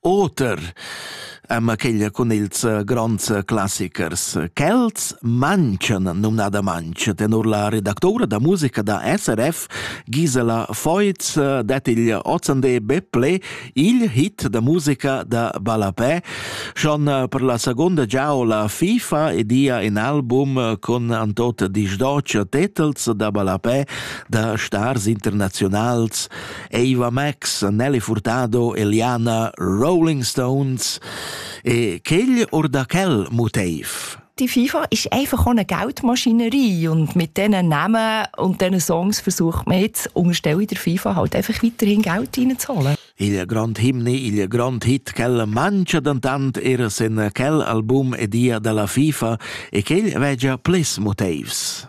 Oter ama queglia cun ils gronds classichers. Quels manchen numnadamaintg tenor la redactoura da musica da SRF Gisela Feuz det il ozande be ple il hit da musica da ballapè schon per la seconda giaola FIFA ed ia in album con antot disdoc titels da ballapè da stars internazionals Eva Max, Nelly Furtado e Liana Rolling Stones. E quel or da quel motiv? Die FIFA ist einfach eine Geldmaschinerie und mit diesen Namen und diesen Songs versucht man jetzt unterstelle der FIFA halt einfach weiterhin Geld reinzuholen. Il grand himne, il grand hit quel mangia dantant er sen quel album e dia della FIFA e quel vegia plis motivs.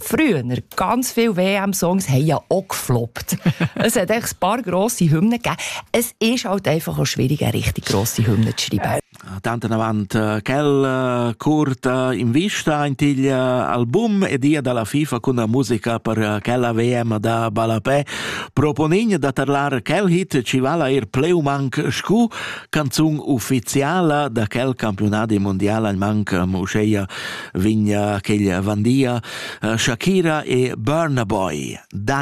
Früher ganz viel WM-Songs haben ja auch gefloppt. es hat echt ein paar grosse Hymnen gegeben. Es ist halt einfach auch schwierig, eine richtig grosse Hymne zu schreiben. Tanten avant äh, quel äh, curt äh, in vista in il album e dia dalla FIFA con la musica per quella VM da Balapè proponign da tarlar quel hit ci vala er pleumanc scu canzun ufficiala da quel campionat mondial manc museia vigna quella vandia Shakira e Burna Boy,